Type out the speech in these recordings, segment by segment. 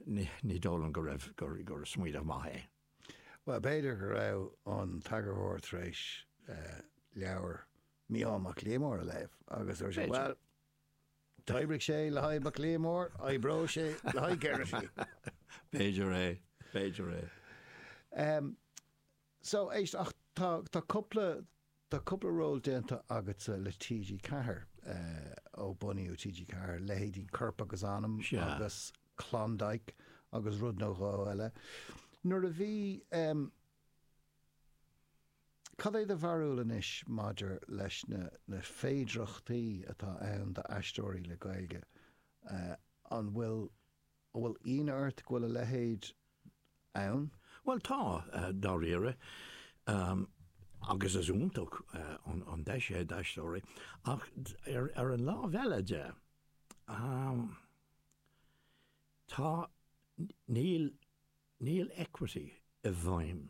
Ní dóigh liom go raibh, gur smaoineamh maith é. Bhuel, b'fhéidir go raibh an t-eagarthóir tar éis leabhar Mhicheál Mac Liammóir a léamh agus dúirt sé, Bhuel, d'oibrigh sé le haghaidh Mac Liammóir, oibreoidh sé le haghaidh Geraghty! B'fhéidir é, b'fhéidir é. So, éist, ach tá, tá cúpla, tá cúpla ról déanta agatsa le TG4, eh, ó bunaíodh TG4, leithéidí Corp agus Anam Sea. agus Klondike agus rud nó dhó eile. Nuair a bhí, em, cad é do bharúil anois maidir leis na, na féidireachtaí atá ann d'aisteoirí le Gaeilge, eh, an bhfuil, An bhfuil ionadh ort go bhfuil a leithéid ann? Bhuel, tá, dáiríre, agus is iontach an deis é d'aisteoirí, ach ar an lámh eile de, tá, níl, níl equity i bhfeidhm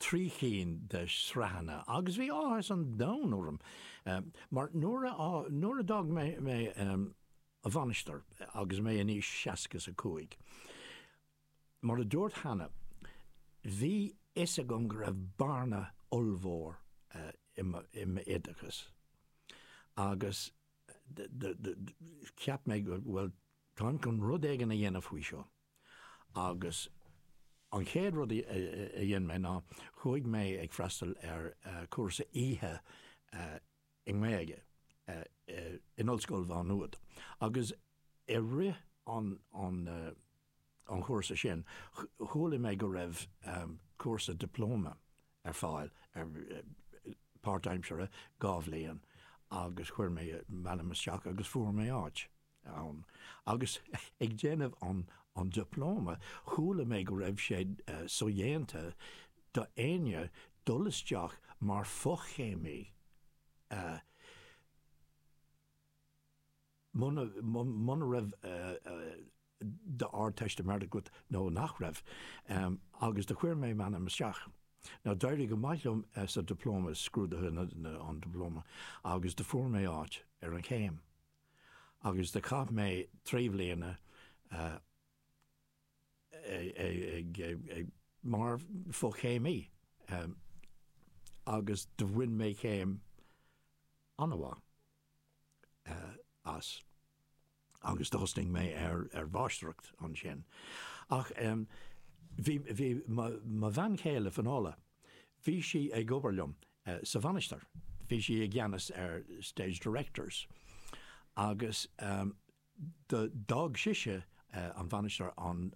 trí cinn de shraitheanna agus bhí áthas an domhain orm mar nuair a nuair a d'fhág mé an mhainistir agus mé in aois seasca is a cúig mar a dúirt cheana bhí fhios agam go raibh bearna ollmhór i mo i m'oideachas agus do do do cheap mé bhuel táim chun rud éigin a dhéanamh faoi seo. Agus an chéad rud a dhein mé ná chuaigh mé ag freastal ar chúrsa oíche i nGaeilge in Ollscoil Mhá Nuad. Agus i rith an chúrsa sin chuala mé go raibh cúrsa dioplóma ar fáil, páirtaimseartha, dhá bhliain, agus chuir mé m'ainm isteach agus fuair mé áit. ann agus ag déanamh an dioplóma, chuala mé go raibh sé sodhéanta d'éinne dul isteach mar fhochéimí muna raibh d'Ardteistiméireacht agat nó nach raibh, agus do chuir mé m'ainm isteach. Now d'éirigh go maith liom sa dioplóma, scrúdaithe an dioplóma, agus do fuair mé áit ar an chéim. agus do chaith mé trí bhliana ag mar fochéimí agus do bhain mé céim an-mhaith as agus do thosnaigh mé ar mháistreacht ansin. Ach bhí mo bhean chéile, Finola, Bhí sí ag obair liom sa Mhainistir, bhí sí i gceannas ar Stage Directors agus do dh'fhág sise an Mhainistir an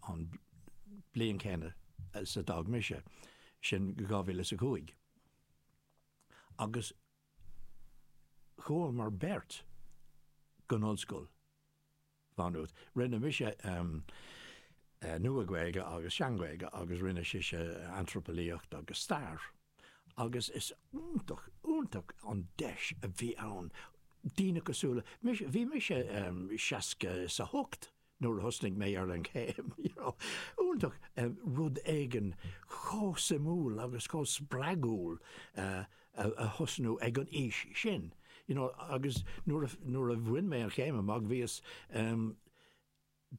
bhliain chéanna is a d'fhág mise, sin dhá mhíle is a cúig. Agus chuamar beirt go hollscoil. Maynooth. Rinne mise Nua-Ghaeilge agus Sean-Ghaeilge agus rinne sise Antraipeolaíocht agus Stair agus is iontach, iontach an deis a bhí ann. Daoine cosúil le mise, bhí mise 60 is a 8 nuair a thosnaigh mé ar an chéim, you know, iontach rud éigin chomh suimiúil agus chomh spreagúil a. a thosnú ag an aois sin you know agus nuair a, nuair a bhain mé an chéim amach bhíos ehm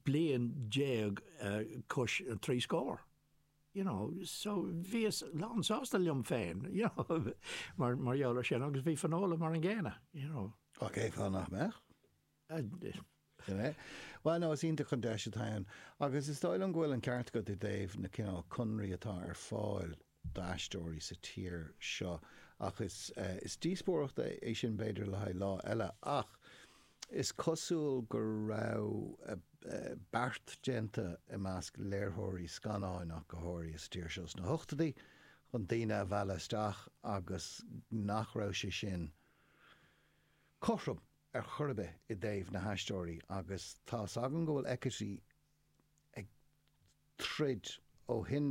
bliain déag is trí scór you know so bhíos lán sásta liom féin you know mar gheall ar sin agus bhí Finola mar an gcéanna you know. Cé fáth nach mbeadh? Bhuel nó, is iontach an deis atá ann agus is dóigh liom go bhfuil an ceart agat i dtaobh na cineál conraí atá ar fáil d'aisteoirí sa tír seo ach is díospóireacht é sin b'fhéidir le haghaidh lá eile ach is cosúil go raibh beart déanta i measc léirtheoirí scannáin ach go háirithe sa tír seo sna hochtaidí chun daoine a mhealladh isteach agus nach raibh sé sin cothrom. ar chor ar bith i dtaobh na haisteoirí agus tá's againn go bhfuil equity ag troid ó shin